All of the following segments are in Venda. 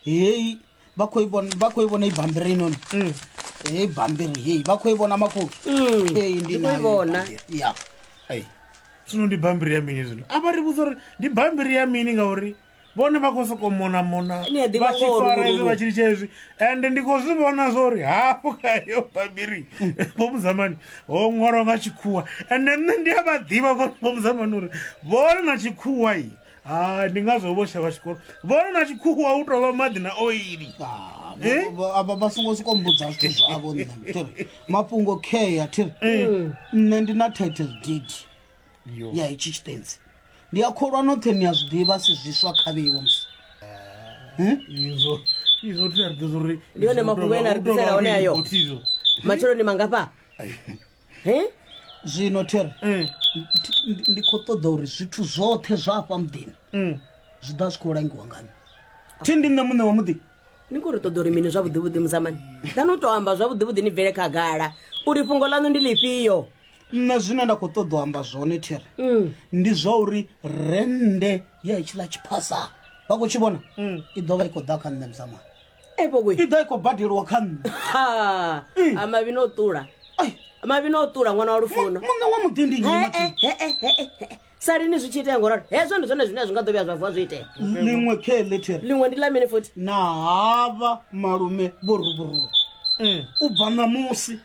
heyi vha khou i vhona vha khou i vhona ibambiri inoni Mm. heyi bambiri heyi vha khou i vhona makhulu Mm, heyi ndi ndi khou i nayo vhona. ibambiri. ya Ai. zwino ndi bambiri ya mini zwino a vha ri vhudza uri ndi bambiri ya mini ngauri vhone vha khou sokou monamona Ni a ḓivha vha tshi ngoho, fara hezwi Lulu. vha tshi litsha hezwi ende ndi khou zwi vhona zwo uri hafho khayo bambiri vhomuzamani ho ṅwalwa nga tshikhuwa ende nṋe ndi a vha ḓivha vhomuzamani uri vhone na tshikhuwa i hai ndi ngazwo vho shavha tshikolo vhona na tshikhuwa u tovha maḓi na oili Ah, Eh? vha- vha- vha- vha songo siko mbudza zwithu zwavho nṋe thiri mafhungo kea thiri Eh. nṋe ndi na title deed Yo. ya itshi tshitenzi ndi a kholwa noṱhe ni a zwi ḓivha si zwiswa khavhiwo musi izwo izwo tea ri ḓo zwo ri Ndi one mafhungo ene a ri ḓisela one ayo. matshelo ni mangafha he zwino thero mm. ndi khou ṱoḓa uri zwithu zwoṱhe zwa afha muḓini mm. zwi ḓa zwi khou langiwa ngani thi ndi nṋe muṋe wa muḓi ni khou ri ṱoḓa uri mini zwavhuḓivhuḓi muzamani ḓani u tou amba zwavhuḓivhuḓi ni bvele khagala uri fhungo ḽaṋu ndi ḽifhio nṋe zwine nda khou ṱoḓa u amba zwone there mm. ndi zwa uri rennde ya itshiḽa tshiphasa vha khou tshi vhona i ḓo vha i khou ḓa kha nṋe muzamani i ḓa i khou badeliwa kha nṋe eh. a mavhi no ṱula mavhi no ṱula ṅwana wa lufuno muṋe wa muḓi ndi nyi sa lini zwi tshi itea ngoralo hezwo ndi zwone zwine zwi nga ḓo vhuya zwa vuwa zwi itea liṅwe khe letter liṅwe ndi ḽa mini futhi na hava malume vho ruburuwa mm. u bva ṋamusi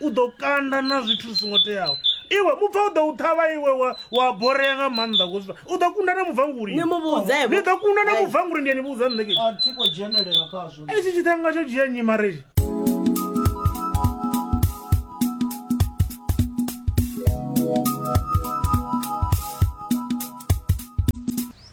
u ḓo kanda na zwithu zwi songo teaho iwe mubva u ḓo u ṱhavha iwe wa borea nga maanḓa kosva u ḓo kunda na mubvanguli ni ḓo kunda na mubvanguli ndi ani vhudza nṋe itshi tshiṱhanga tsho dzhia nyi mareji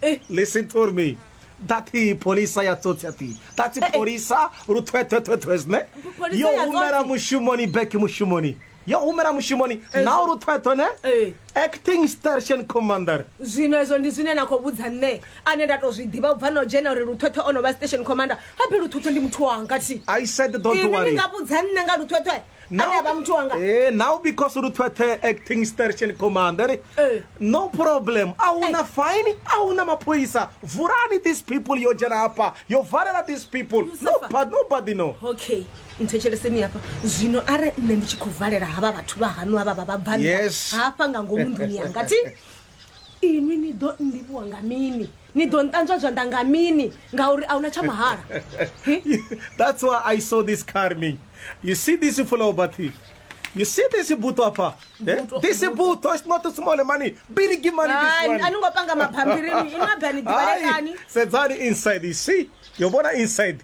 eh, Listen for me. dati polisa ya tsotsi ati dati polisa ruthwethwethwethwes ne Polisa yo ya humela tsotsi. mushumoni back mushumoni yo humela mushumoni nao ruthwethwe ne Eh. acting station commander zwino ezwo ndi zwine na khou vhudza nṋe ane nda tou zwi ḓivha u bva no dzhena uri luthwethwe o no vha station commander habe luthwethwe ndi muthu wanga thi i said don't ini ni worry nga vhudza nṋe nga luthwethwe Now, Ane ba muthu wanga. eh, now because uri thwethe acting station commander Eh. no problem a huna fine a huna maphoyisa vulani these people yo dzhena hafha yo valela these people Lucifer. nobody, nobody no okay nthetsheleseni hafha zwino are nṋe ndi tshi khou valela havha vhathu vha hanu havha vha vhabvani Yes. hafha nga ngomu nḓuni yanga ti inwi ni ḓo nlivhuwa nga mini ni ḓo nṱanzwa zwanḓa nga mini ngauri a huna tsha mahala that's why i saw this car me you see this flow bathi You see this buto apa? Eh? This buto is not a small money. Big money this one. Ani ngopanga maphambirini, imagani dibalekani. Sedzani inside, you see? You bona inside.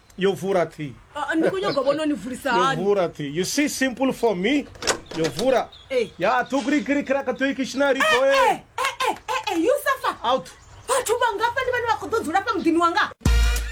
yo vura thi Ah, ah, ndi khou nyanga u vhona ni vulisa yo hani vura thi you see simple for me yo vura Eh. ya tukurikirikiraka toikishinari toe Eh, eh, eh, eh, eh, you suffer out vhathu vhangafha ndi vhane vha khou ḓo dzula fha muḓini wanga